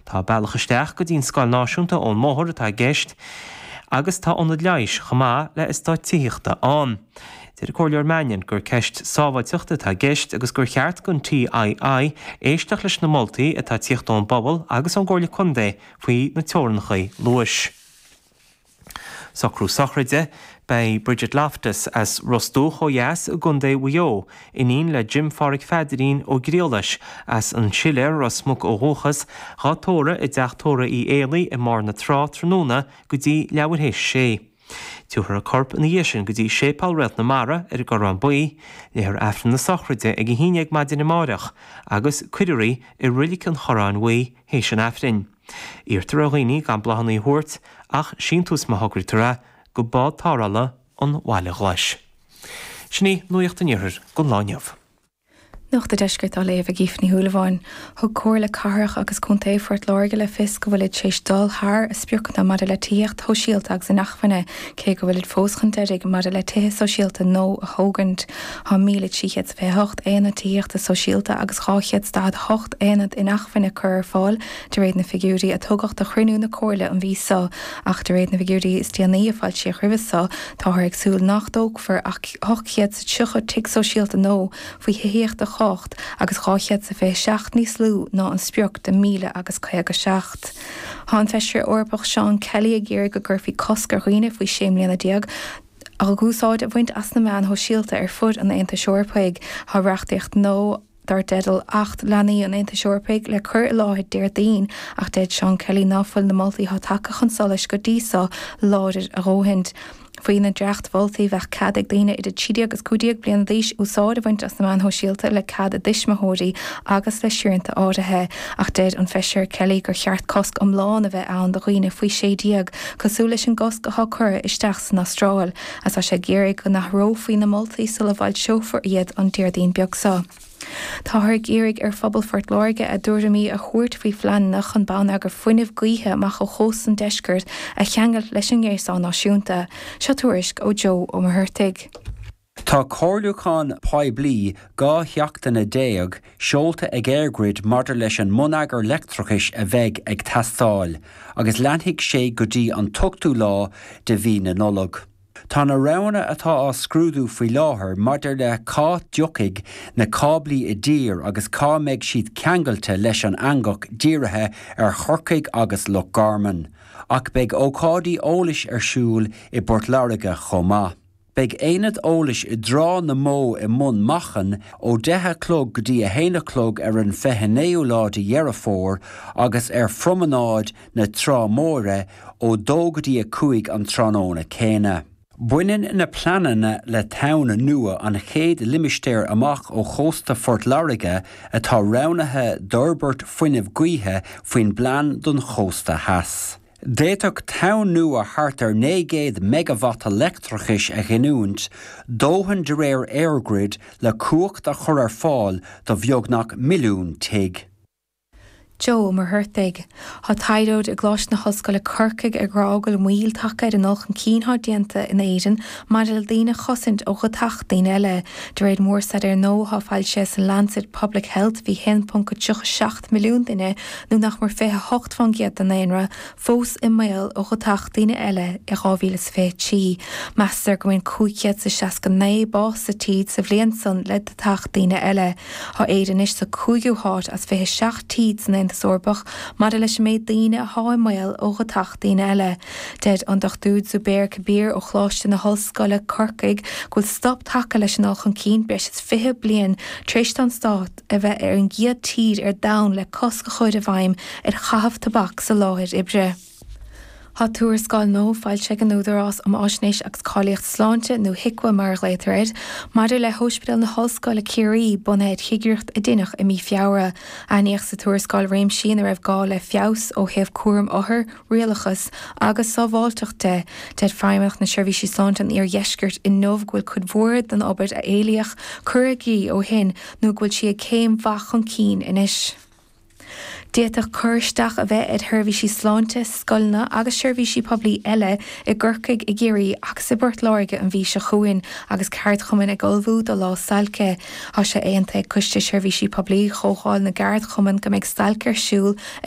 Tá bealach isteach go dtí'n scoil náisiúnta ón mbóthar atá i gceist agus tá ionad leighis chomh maith le heastáit tithíochta ann. Deir an Comhairleoir Mannion gur ceist sábháilteachta atá i gceist agus gur cheart don TII éisteacht leis na moltaí atá ag tíocht ón bpobal agus ón gComhairle Contae faoi na teorannachaí luais. Socrú sochraide, beidh Bridget Loftus as Ros Dumhach ó dheas i gContae Mhaigh Eo, iníon le Jim Pháraic Pheadairín Ó Griallais, as an Siléar Ros Muc ó dhúchas, dhá tórramh i dTeach Tórraimh Uí Éalaí i mBarr na Trá tráthnóna go dtí leathuair théis a sé. Tiúrfar a corp ina dhiaidh sin go dtí Séipéal Réalt na Mara ar an gCorrán Buí, léifear Aifreann na Sochraide ag a haon déag maidin amáireach, agus cuirfear í i reilig an Chorráin Bhuí théis an Aifrinn. Iarrtar ar dhaoine gan bláthanna a thabhairt ach síntiús má thograítear é go bád tarrthála an Bhaile Ghlais. Sin í nuaíocht an iarthair don lá inniu. Nuacht an Deiscirt á léamh ag Aoife Ní Shúilleabháin. Thug Comhairle Cathrach agus Contae Phort Láirge le fios go bhfuilid tar éis dul thar a spriocanna maidir le tithíocht shóisialta agus inacmhainne, Cé go bhfuilid fós chun deiridh maidir le tithe sóisialta No a thógaint, tá 1,328 aonad tithíochta sóisialta agus 248 aonad inacmhainne curtha ar fáil de réir na figiúirí a tugadh do chruinniú na Comhairle an mhí so ach de réir na bhfigiúirí is déanaí a foilsíodh roimhe so táthar ag súil nach dtógfar ach 830 tigh sóisialta No faoi thithíocht a chumhacht agus 227 níos lú ná an sprioc de 1,057. Tá an Feisire Eorpach Seán Kelly ag iarraidh go gcuirfí cosc ar dhaoine faoi 16 mbliana úsáid a bhaint as na meáin shóisialta ar fud an Aontais Eorpaigh. Tá reachtaíocht nua dar teideal Acht Leanaí an Aontais Eorpaigh le cur i láthair Déardaoin ach deir Seán Kelly ná fuil na moltaí atá tagtha chun solais go dtí so láidir a ndóthaint. Faoi na dréachtmholtaí, bheadh cead ag daoine idir 13 agus 15 bliana d'aois úsáid a bhaint as na meáin shóisialta le cead a dtuismitheoirí agus le srianta áirithe, ach deir an Feisire Kelly gur cheart cosc iomlán a bheith ann do dhaoine faoi 16, cosúil leis an gcosc atá curtha isteach san Astráil, agus tá sé ag iarraidh go n-athrófaí na moltaí sula bhfoilseofar iad an Déardaoin beag so. Táthar ag iarraidh ar phobal Phort Láirge a dtuairimí a thabhairt faoi phleananna chun bonneagar fuinnimh gaoithe amach ó chósta an deiscirt a cheangailt leis an ngréasán náisiúnta. Seo tuairisc ó Joe Ó Muircheartaigh. Tá comhairliúchán poiblí 12 sheachtaine seolta ag EirGrid maidir leis an mbonneagar leictreachais a bheidh ag teastáil, agus leanfaidh sé go dtí an t-ochtú lá de mhí na Nollag. Tá na roghanna atá á scrúdú faoi láthair maidir le cá dtiocfaidh na cáblaí i dtír agus cá mbeidh siad ceangailte leis an eangach dírithe ar Chorcaigh agus Loch Garman, ach beidh ócáidí eolais ar siúl i bPort Láirge chomh maith. Beidh aonad eolais i dTrá na mBó i mBun Machan ó 10 a chlog go dtí a haon a chlog ar an 29ú lá de Dheireadh Fómhair agus ar phromanáid na Trá Móire ó dó go dtí a cúig an tráthnóna céanna. Baineann na pleananna le Tonn Nua, an chéad limistéar amach ó chósta Phort Láirge atá roghnaithe d'fhorbairt fuinnimh gaoithe faoin bPlean don Chósta Theas. D'fhéadfadh Tonn Nua thart ar 900 meigeavata leictreachais a ghiniúint, dóthain de réir EirGrid le cumhacht a chur ar fáil do bheagnach milliún tigh. Joe Ó Muircheartaigh. Tá taighdeoir i gColáiste na hOllscoile Corcaigh ag rá go bhfuil moill tagtha ar an dul chun cinn atá déanta in Éirinn maidir le daoine a chosaint ó dheatach daoine eile. De réir mórstaidéir nua atá foilsithe san Lancet Public Health bhí 1.37 milliún duine, nó nach mór 28% den ndaonra, fós i mbaol ó dheatach daoine eile i 2023. Meastar go mbaineann 569 bás sa tír sa bhliain san le deatach daoine eile. Tá Éire anois sa cúigiú háit as 27 tír san Aontas Eorpach maidir leis an méid daoine athá i mbaol ó dheatach daoine eile. Deir an Dr Zubair Kabir ó Choláiste na hOllscoile, Corcaigh, go bhfuil stop tagtha leis an dul chun cinn breis is 20 bliain tar éis don stát a bheith ar an gcéad tír ar domhan le cosc a chur i bhfeidhm ar chaitheamh tobac sa láthair oibre. Tá tuarascáil nua foilsithe ag an Údarás um Fhaisnéis agus Cáilíocht Sláinte, nó HIQA mar a ghlaotar air, maidir le hOspidéal na hOllscoile Ciarraí, bunaithe ar chigireacht a dineadh i mí Feabhra. Aithníodh sa tuarascáil réimsí ina raibh gá le feabhas ó thaobh cúram othar, rialachas agus sábháilteacht de. Deir Feidhmeannacht na Seirbhísí Sláinte an Iardheiscirt inniu go bhfuil cuid mhór den obair a éilíodh curtha i gcrích ó shin nó go bhfuil sí ag céim mhaith chun cinn anois. D'fhéadfadh cur isteach a bheith ar sheirbhísí sláinte, scoileanna agus seirbhísí poiblí eile i gCorcaigh, i gCiarraí agus i bPort Láirge an mhí seo chugainn agus ceardchumainn ag ullmhú do lá stailce. Tá sé aontaithe ag Coiste Seirbhísí Poiblí Chomhdháil na gCeardchumann go mbeidh stailc ar siúl ar